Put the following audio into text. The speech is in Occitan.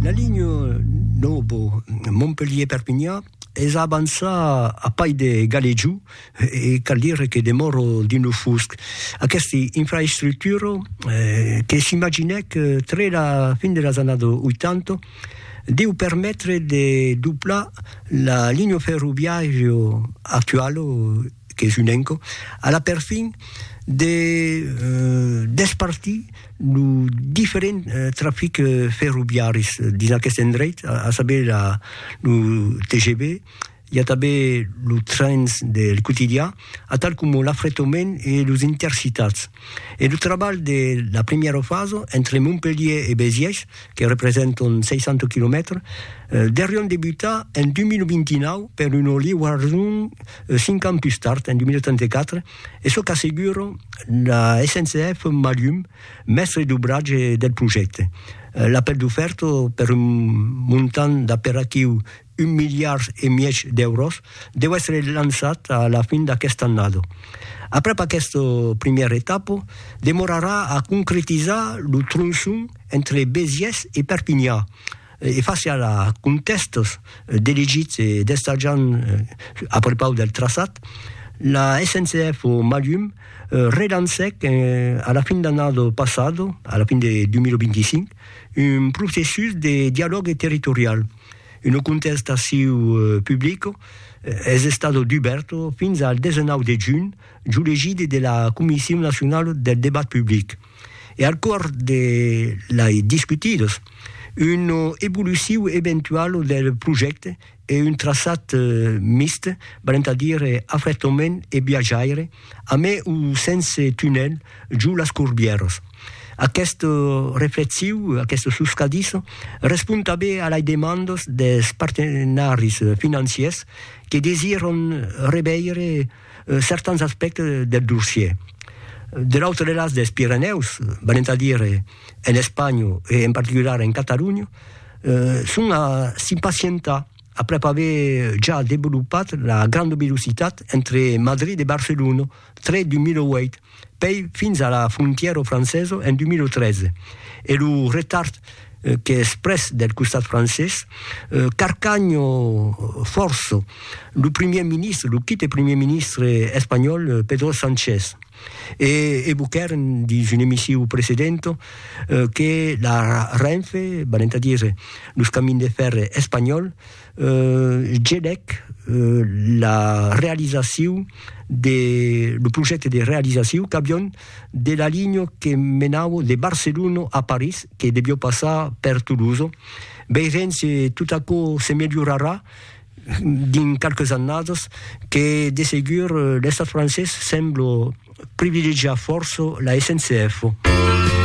La linha nòva Montpelhièr-Perpinhan es a avançar a pair de Galejou e cal dire que demòra dins lo fusc. Aquesta infraestructura, que s'imaginèc tre la fin de las annadas 80, deu permetre de doblar la linha ferroviària actuala qu'es un enco, a la perfin de despartir lo diferent trafic ferroviaris dins aqueste endreit, a saber la lo TGV, i a tanben los trens del quotidian, atal coma l'afretomènt e los intercitats. E lo trabalh de la primièra fasa, entre Montpelhier e Béziers, que representan 60 quilomètres, deurián debutar en 2029 per una liuason 5 ans pus tard, en 2034, es çò qu'assegura la SNCF Malhum, mèstre d'obratge del projècte. L'apèl d'ofèrta per un montant d'aperaquiu un miliard e mièg d'èuros deu èsser lançat a la fin d'aquesta annada. Aprèp aquesta primièra etapa, demorarà a concretizar lo tronçon entre Besiès e Perpinha e fàcia la contèstas d'elegits e d'estatjants a prepaus del traçat, la SNCF o Malhum relancèc a la fin d'annada passada, a la fin de 2025, un processus de dialògue territorial. Una contestaciu publica es estada dubèrta fins al 19 de junh, jo l'egidi de la Comission nationale del débat public, e al cors de lai discutidas una evoluciu eventuala del projècte e un traçat mixt, valent a dire afretament e viatjaire, amé o sense tunèl, jo las corbièras. Aquest reflexiu, aquesta soscadissa, respond tanben a lai demandas des partenaris financiers que desiràn reveire certans aspèctes del dossier. De l'autre las des Pirenèus, valent a dire en Espanha e en particular en Catalonha, son a s'impacientar. Aprèp aver ja devolopat la granda velocitat entre Madrid e Barcelona, tre 2008, pèi fins a la frontièra francesa en 2013, e lo retard qu'es pres del costat francés, carcanha fòrça lo primièr ministre, lo quite primièr ministre espanhòl Pedro Sánchez. E evoquèren, dins un emissiu precedent, que la Renfe, venent a dire los Camins de Fèrre espanhòls, gelèc la realizaciu de lo projècte de realizaciu qu'avión de la linha que menava de Barcelona a París, que devió passar per Toulouse. Veirem se tot aquò se melhorarà. dins qualques annadas que de segur l'Estat francés sembla privilegiar fòrça la SNCF.